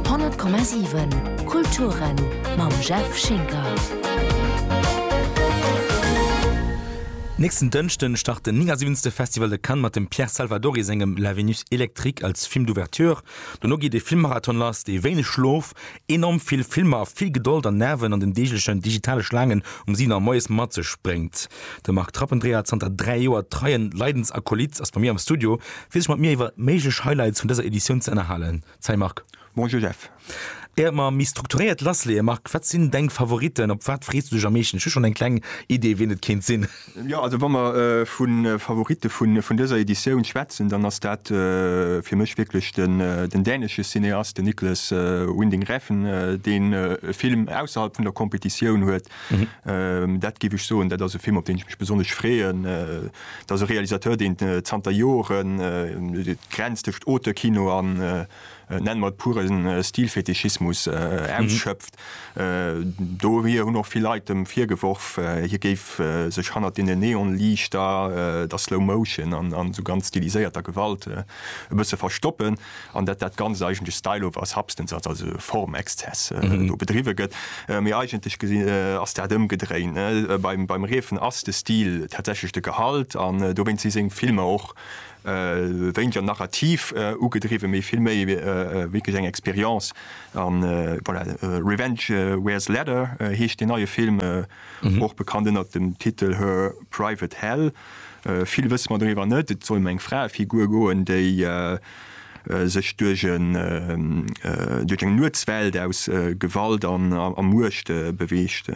100,7 Kulturen mam Jeff Schinker. Nächsten Dënschden start den 79. Festival de Cannes mat dem Pierre Salvadori sengem La Vénus électrique als Film d'ouverture. Dono geet ee Filmmarathon lass, dee wéineg Schlof, enorm vill Filmer a vill Gedold an Nerven an den deeglechen digitale Schlaangen um 7 Auer moies mat sech bréngt. De Marc Trappendreher, zanter 3 Joer treien Leidensakolyt, ass bei mir am Studio, fir sech mat mir iwwer méiglech Highlights vun dëser Editioun ze ënnerhalen. Salut Marc. Bonjour Jeff. Éiert mer méi strukturéiert lassleeë, Marc, wat sinn deng Favoriten? Op wat frees du dech am meeschten? Ech hu schonn eng kleng Idee, wien et kéint sinn. Jo, also wa mer vu Favoritte vun dëser Editioun schwätzen, dann ass dat fir mech wierklech den dänesche Cineast, den Niklas Winding Refn, deen e Film ausserhalb vun der Competitioun huet. Dat géif ech soen, dat ass e Film, op deen ech mech besonnesch freeën. Dat ass e Realisateur, deen zanter Joren d'Grenz tëscht Auteurkino a nenne mer et puren Stilfetischismus, ausschöpft. Do hir hunn och vill Leit em virgeworf, hie géif sech hannert deenen Neonliichter, der Slow Motion an esou ganz stiliséierter Gewalt e bësse verstoppen an datt dat Ganzt eigentlech Style over substance ass, also e Formexzess do bedriwwe gëtt. Mee eigentlech gesi ass dat ëmgedréin, ne? Beim Refn ass de Stil tatsächlech de Gehalt an dowéinst si seng Filmer och Wéinter narrativ ugedriwwen, mee vill méi wierklech eng Experience. A voilà, Revenge Wears Leather heescht deen neie Film, och bekannt ënnert dem Titel Her Private Hell. Vill wësse mer doriwwer net. Et soll ëm eng Fraefigur goen, déi sech duerch eng Nuetswelt aus Gewalt a Muecht beweegt.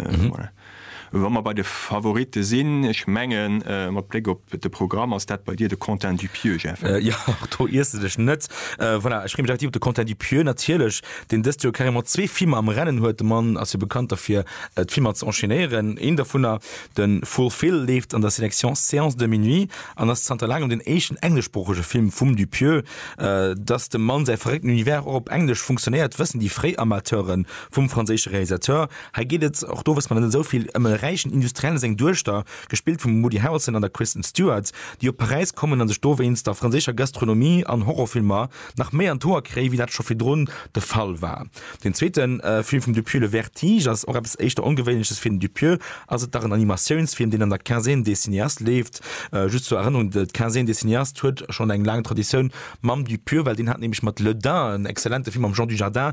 Wa mer bei de Favoritte sinn, ech mengen, mat Bléck op de Programm, ass dat bei dir de Quentin Dupieux, Jeff, eh? Jo, och do iers de dech net. Voilà, ech freeë mech effektiv op de Quentin Dupieux, natierlech, deen dëst Joer carrément zwee Filmer am Rennen huet. De Mann ass jo bekannt derfir, d'Filmer ze enchaînéieren. Een dovunner, de Fulfil, leeft an der Sélection Séance de minuit an ass zanter laangem den éischten engleschsproochege Film vum Dupieux. Dass dem Mann säi verréckten Univers och op Englesch funktionéiert, wëssen déi fréi Amateure vum franséische Realisateur. Hei geet et, och do wësst mer net esou vill, ëm e räichen Industriellen a seng Duechter, gespillt vum Woody Harrelson an der Kristen Stewart, déi op Paräis kommen a sech do wéinst der franséischer Gastronomie an Horrorfilmer nach méi an d'Hoer kréien, wéi dat scho virdrun de Fall war. Den zweete Film vum Dupieux, Le Vertige, ass och eppes éischter Ongewéinleches. Fir den Dupieux ass et dach en Animatiounsfilm, deen an der Quinzaine des cinéastes leeft. Just zur Erënnerung, d'Quinzaine des cinéastes huet schonn eng laang Traditioun mam Dupieux, well deen hat nämlech mat Le Dain en exzellente Film mam Jean Dujardin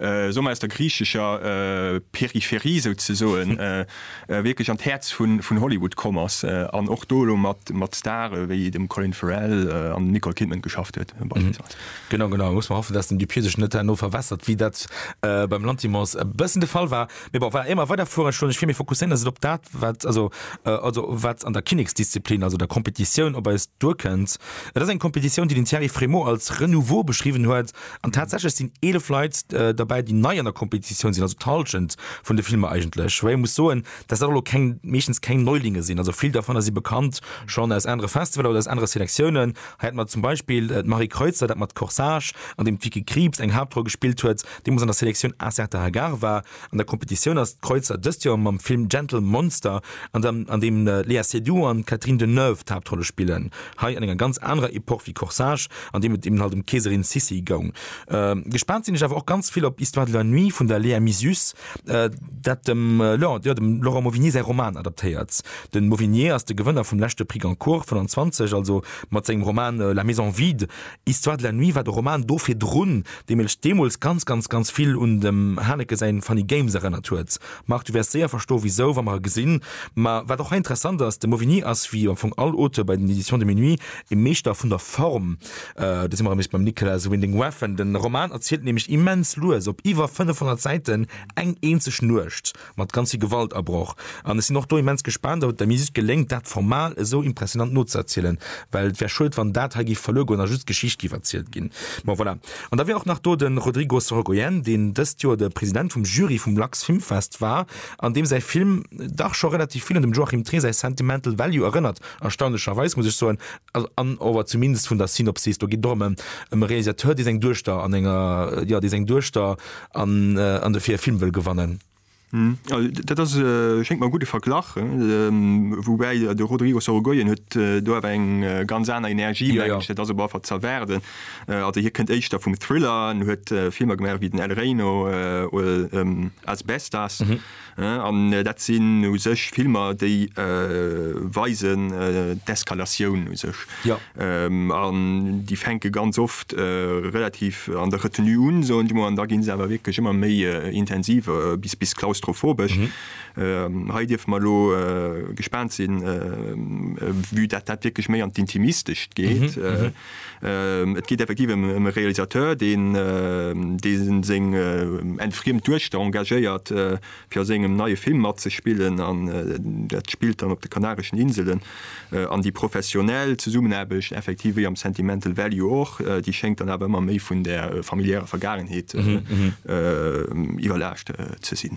esou mer aus der griichescher Peripherie souzesoen wierklech an d'Häerz vun Hollywood komm ass an och do elo mat Stare wéi dem Colin Farrell an dem Nicole Kidman geschafft huet beispillsweis. Genau, genau. Muss mer hoffen, dass den Dupieux sech net herno verwässert, wéi dat beim Lanthimos e bëssen de Fall war. Mee bon, voilà, éier mer weiderfueren, ech wollt mech vill méi fokusséieren elo op dat, wat also also wat an der Kinneksdisziplin, also der Competitioun op eis duerkënnt. Et ass eng Competitioun, déi den Thierry Frémaux als Renouveau beschriwwen huet, An tatsächlech sinn 11 Leit derbäi, déi nei an der Kompetitioun sinn, also d'Hallschent vun de Filmer eigentlech. Woubäi ee muss soen, dass dat elo keng, meeschtens keng Neulinge sinn, also vill dervunner si bekannt schonn aus anere Festivaler oder aus anere Selektiounen. Hei hätte mer zum Beispill d'Marie Kreutzer, dat mat Corsage, an deem d'Vicky Krieps eng Haaptroll gespillt huet, déi mol an der Selektioun Acerta Hagar war. An der Kompetitioun ass d'Kreuzer dëst Joer mam Film Gentle Monster, an deem d'Léa Seydoux an d'Catherine Deneuve d'Haaptrolle spillen. Hei an enger ganz anerer Epoch wéi Corsage, an deem et eben halt ëm d'Keeserin Sissi goung. Gespaant sinn ech awer och ganz vill op Histoire de la nuit vun der Léa Mysius, dat dem Laurent Mauvigné säi Roman adaptéiert. De Mauvigné ass de Gewënner vum leschte Prix Goncourt 25, also mat sengem Roman La maison vide, Histoire de la nuit war de Roman do virdrun, dee mech deemools ganz, ganz, ganz vill un dem Haneke säin Funny Games erënnert huet. Marc, du wäers séier verstoe wisou, wa mer e gesinn. Mä wat och hei interessant ass, de Mauvigny ass, wéi am Fong all Auteur bei den Éditions de Minuit, e Meeschter vun der Form. Do si mer erëm nees beim Nicholas Winding Refn. De Roman erzielt nämlech immens lues, op iwwer 500 Säiten, eng eenzeg Nuecht. Mat ganzi Gewalt abroch. An ech sinn och do immens gespaant, ob et der Musique geléngt, dat formal esou impressionant nozeerzielen, well et wär schued, wann dat hei géif verluer goen a just d'Geschicht géif erzielt ginn. Bon, voilà. An da wär och nach do de Rodrigo Sorogoyen, deen dëst Joer de President vum Jury vum Lux Film Fest war an deem säi Film dach scho relativ vill un dem Joachim Trier säi Sentimental Value erënnert, erstaunlecherweis, muss ech soen, an ower zumindest vun der Synopsis. Do geet et och ëm e Realisateur, dee seng Duechter an enger, jo, dee seng Duechter An an dofir e Film wëll gewannen. Dat ass, schéngt mer, e gudde Verglach, woubäi de Rodrigo Sorogoyen huet do awer eng ganz aner Energie, mengen ech. Dat ass op alle Fall z'erwaarden. Also hie kënnt éischter vum Thriller an huet Filmer gemaach wéi den El Reino oder Asbestas. An dat sinn u sech Filmer, déi weisen d'Eskalatioun u sech. An déi fänke ganz oft relativ an der Retenue un, soen ech emol, an da gi se awer wierklech ëmmer méi intensiv bis klaustrophobesch. Hei dierfe mer elo gespaant sinn, vue dat dat wierklech méi an d'Intimistescht geet. Et geet effektiv ëm e Realisateur, deen seng entfriemt Duechter engagéiert, fir a sengem neie Film matzespillen. Dat spillt dann op de Kanareschen Inselen. An déi professionell Zesummenaarbecht, effektiv wéi am Sentimental Value och, déi schéngt dann awer ëmmer méi vun der familiärer Vergaangenheet iwwerlaascht ze sinn.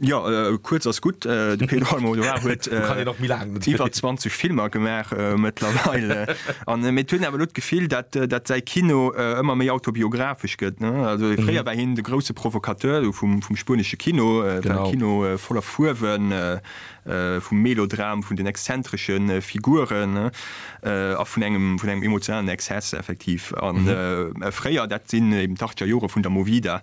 Jo, kuerz ass gutt. De Pedro Almodovar huet iwwer 20 Filmer gemaach mëttlerweil. Mee et hunn awer elo d'Gefill, datt säi Kino ëmmer méi autobiographesch gëtt. Fréier war hien de grousse Provokateur vum spuenesche Kino, e Kino voller Fuerwen, vum Melodram, vun den exzentresche Figuren a vun engem emotionalen Exzess effektiv. Fréier, dat sinn eben d'Achtgerjore vun der Movida,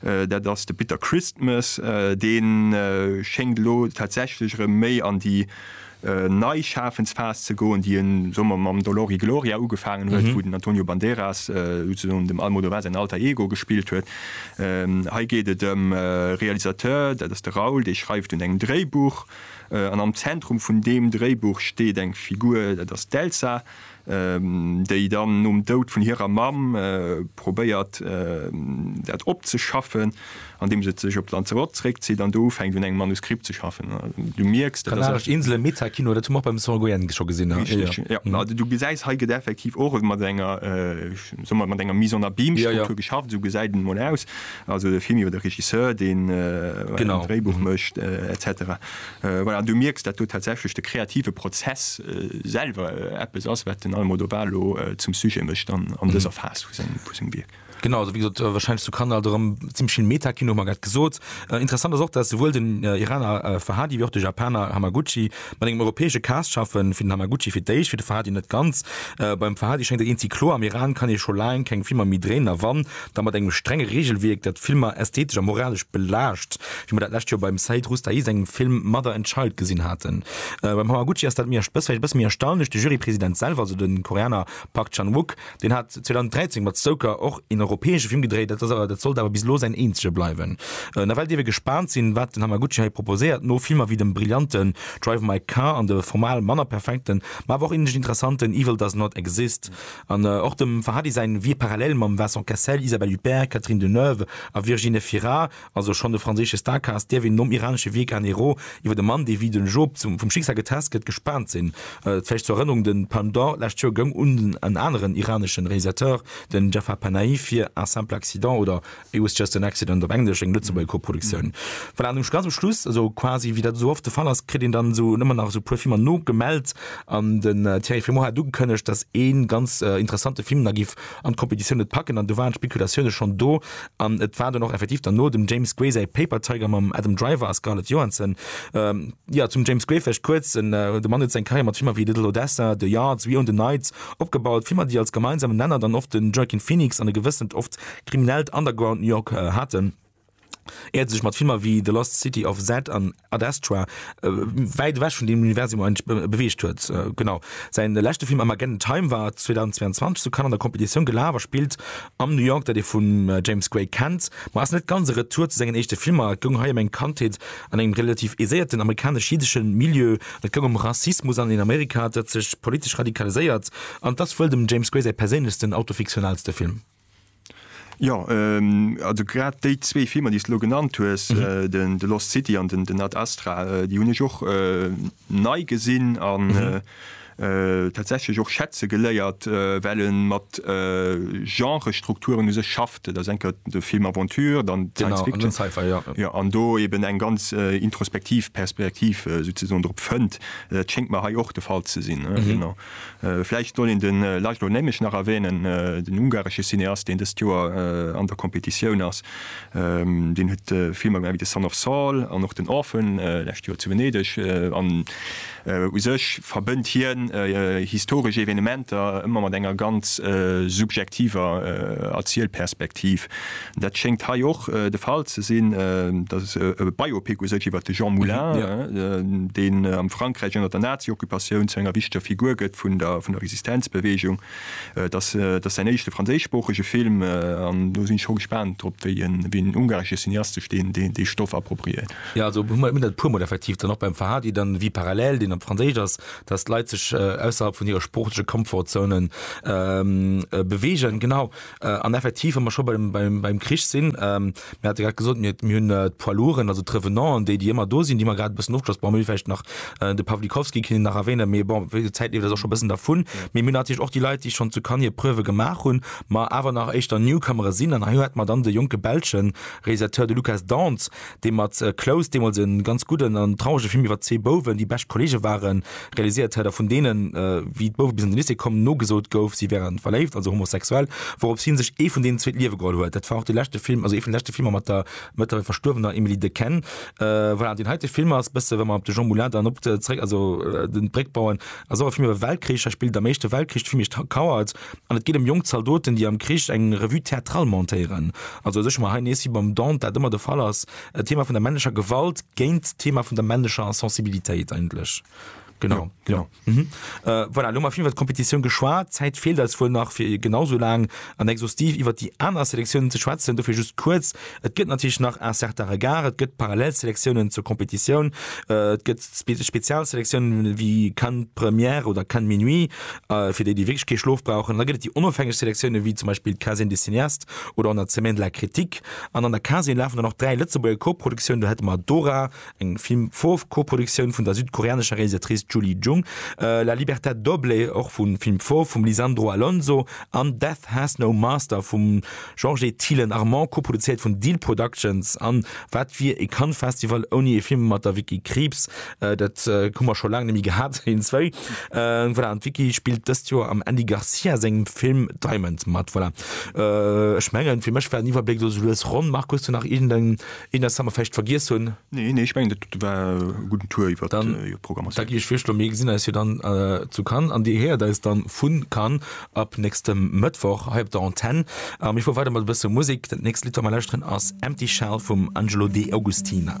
Dat ass de Bitter Christmas. Dee schéngt elo tatsächlech erëm méi an déi nei Schafensphas ze goen, déi e soe mer mam Dolor y Gloria ugefaangen huet, wou den Antonio Banderas souzesoen dem Almodovar säin Alter Ego gespillt huet. Hei geet et ëm e Realisateur, dat ass de Raúl, dee schreift un engem Dréibuch an am Zentrum vun deem Dréibuch steet eng Figur, dat ass d'Elsa. déi dann nom Doud vun hirer Mamm probéiert dat opzeschaffen, andeem se sech op Lanzarote zeréckzitt an do ufänkt un engem Manuskript ze schaffen. Du mierks, dat ass eng. Inselen, Meta-Kino, dat hu mer och beim Song Goyenne scho gesinn. Richteg, jo. Ma du gesäis, hei gëtt effektiv och mat enger, soe mer, mat enger Mise en abîme Struktur geschafft, esou gesäit et emol aus. Also de Film iwwer de Regisseur, deen e Dréibuch mécht, et cetera. Voilà, du mierks, dat do tatsächlech de kreative Prozess selwer eppes ass, wat den Almodóvar elo zum Sujet mécht an dëser Phas vu sengem Wierk. Genau, also wéi gesot, wahrscheinlech zu Kandahar erëm zimmlech vill Meta-Kino, hu mer grad gesot. Interessant ass och, dass souwuel den Iraner Fahadi wéi och de Japaner Hamaguchi mat engem europäesche Cast schaffen, fir den Hamaguchi fir d'éischt, fir de Fahadi net ganz. Beim Fahadi schéngt et eenzegi kloer, am Iran kann ee scho laang keng Filmer méi dréinen, a wann, da mat engem strenge Reegelwierk, dat d'Filmer ästhetesch a moralesch belaascht, wéi mer dat d'lescht Joer beim Seid Roustahi sengem Film Mother and Child gesinn haten. Beim Hamaguchi ass dat vläicht e bësse méi erstaunlech, de Jurypresident selwer, also de Koreaner Park Chan-wook, deen hat 2013 mat Stoker och een europäesche Film gedréit, dat ass awer, dat sollt awer bis elo säin eenzege bleiwen. Nawell dierf ee gespaant sinn, wat den Hamaguchi hei proposéiert, no Filmer wéi dem brillanten Drive My Car an de formal manner perfekten, ma awer och inhaltlech interessanten Evil Does Not Exist. An och dem Fahadi säin wier parallel mam Vincent Cassel, Isabelle Huppert, Catherine Deneuve a Virginie Efira, also schonn e franséische Starcast, dierf een nom iranesche Wierk Anero iwwer e Mann, dee wéi den Job vum Schicksal getest gëtt, gespaant sinn. Vläicht zur Erënnerung, de Palme d'Or lescht Joer goung un en aneren iraneschen Realisateur, den Jafar Panahi, fir Un simple accident oder It was just an accident, op Englesch, eng Lëtzebuerger Koproduktioun. Voilà, an ganz um Schluss, esou quasi wéi dat esou oft de Fall ass, kritt een dann esou ëmmer nach esou e puer Filmer nogemellt. An den Thierry Frémaux hat ugekënnegt, datt ee ganz interessante Film nach géif an d'Kompetitioun net packen. An do waren d'Spekulatioune schonn do. An et war dann och effektiv dann no dem James Gray säi Paper Tiger mam Adam Driver a Scarlett Johansson. Jo, zum James Gray vläicht kuerz, De Mann huet seng Karriär mat Filmer wéi Little Odessa, The Yards, We Own the Night opgebaut, Filmer, déi als gemeinsamen Nenner dann oft de Joaquin Phoenix an e gewëssent, oft Kriminellt Underground New York haten, éiert sech mat Filmer wéi The Lost City of Z an Ad Astra wäit ewech vun deem Universum eigentlech beweegt huet. Genau säi leschte Film Armageddon Time war 2022 zu Cannes an der Competitioun gelaf a spillt am New York, dat ee vum James Gray kennt, ma ass net ganz e Retour zu sengen éischte Filmer. Et goung hei ëm eng Kandheet an engem relativ aiséierten amerikanesch-jiddesche Milieu, et goung ëm Rassismus an een Amerika, dat sech politesch radikaliséiert, an et ass wuel dem James Gray säi perséinlechsten, autofiktionalste Film. Jo, also grad déi zwee Filmer, déi s de elo genannt hues, den The Lost City an den Ad Astra, déi hunn ech och nei gesinn an tatsächlech och schätze geléiert, well e mat Genrestrukturen u sech schafft. Et ass eng Kéier de Film Aventure, dann Science Fiction, an dann Sci-Fi, jo. Jo, an do eben eng ganz introspektiv Perspektiv souzesoen drop fënnt. Dat schéngt mer hei och de Fall ze sinn, genau. Vläicht soll een de László Nemes nach erwänen, den ungaresche Cineast, deen dëst Joer an der Kompetitioun ass. Deen huet Filmer gemaach wéi The Son of Saul an och den Orphan, lescht Joer zu Venedeg. An u sech verbënnt hien historesch Evenementer ëmmer mat enger ganz subjektiver Erzielperspektiv. Dat schéngt hei och de Fall ze sinn. Dat ass e Biopic u sech iwwer de Jean Moulin, deen am Frankräich ënner der Nazi-Occupatioun zu enger wichteger Figur gëtt vun der Resistenzbeweegung. Et ass säin éischte franséischsproochege Film an do sinn ech scho gespaant drop, wéi en ungaresche Cineast sech dee Stoff appropriéiert. Jo, also hu mir dat e puermol effektiv dann och beim Fahadi dann wéi Parallèle, deen op Franséisch ass, dass d'Leit sech ausserhalb vun hire sproochleche Comfort-Zonen beweegen. Genau. An effektiv, wa mer scho beim Krich sinn, mir hate grad gesot, mir hunn d'Poids lourden, also d'Revenanten, déi, déi ëmmer do sinn, déi mer grad e bëssen ofgeschloss, bon, mir hunn vläicht nach de Pawlikowski, kinne nach erwänen, mee bon, d'Zäit leeft eis och scho e bëssen dervun. Mee mir hunn natierlech och déi Leit, déi schonn zu Cannes hir Preuve gemaach hunn, ma awer nach éischter Newcomere sinn. An hei hate mer dann de jonke belschen Realisateur, de Lukas Dance, dee mat Close deemools e ganz gudden an traurege Film iwwer zwee Bouwen, déi bescht Kollege waren, realiséiert huet a vun deenen, wéi d'Bouwe bis an de Lycée kommen, nogesot gouf, si wäre verléift, also homosexuell, wourop hie sech ee vun deenen zwee d'Liewe geholl huet. Dat war och de leschte Film, also ee vun de leschte Filmer mat der mëttlerweil verstuerwener Emily Dequenne. Voilà, deen heite Film ass e bësse, wa mer op de Jean Moulin dann op zeréck, also d'Bréck bauen, ass och e Film iwwer Weltkrich. Hei spillt am Éischte Weltkrich de Film Iech kauert an et geet ëm jonk Zaldoten, déi am Krich eng Revue théâtrale montéieren. Also ech hu mer hei nees, wéi beim Dante dat ëmmer de Fall ass, Äh, Thema vun der männlecher Gewalt géint Thema vun der männlecher Sensibilitéit eigentlech. Genau, ja, genau. Ja. Genau. Mhm. Äh, voilà, lo mal viel wat Kompetitioun geschwaart, Zäit fehlt als wohl nach fir genauso lang an exhaustiv iwwer die aner Selektionen ze schwätzen, dofir just kurz. Et gëtt natürlich nach un certain Regard, et gëtt Parallelselektionen zur Kompetitioun, äh, et gëtt spe Spezialselektionen wie kann Première oder kann Minuit äh, fir déi die wirklich kee Schlof brauchen. Da gëtt et die onofhängeg Selektionen wie zum Beispiel Casin des Cineast, oder an der Semaine de la Critique, an an der Casien lafen dann och dräi Lëtzebuerger Koproduktiounen, do hätte mer Dora, eng Film Fauve Koproduktioun vun der südkoreanescher Realisatrice Julie Jung, La libertà doble, och vu Film Fauve, vum Lisandro Alonso, an Death has no master vum Georges Thielen Armand, koproduzéiert vun Deal Productions, an wat wier ee Cannes Festival ouni ee Film mat der Vicky Krieps? Dat hu mer scho laang nemmi gehat hin zwéi voilà, an Wiki spielt dëst Joer am Andy Garcia sengem Film Diamond mat voilà. äh, ech mengen fir mech war Iwwerbléck do lues ronn Markus du nach irgendein in der Summerfecht vergiess hunn Nee, nee, ich mein, dat war guten Tour iwwer dann äh, Programm. Da gi ech virschlo mé gesinn eis jo dann äh, zu kann an Dir héiert eis dann vun kann ab nächstem Mëttwoch hei op der Antenn. Am ich vu weiter mat bësse Musik. Dat nächst Litter mal lauschteren ass Empty Shell vum Angelo de Augustina.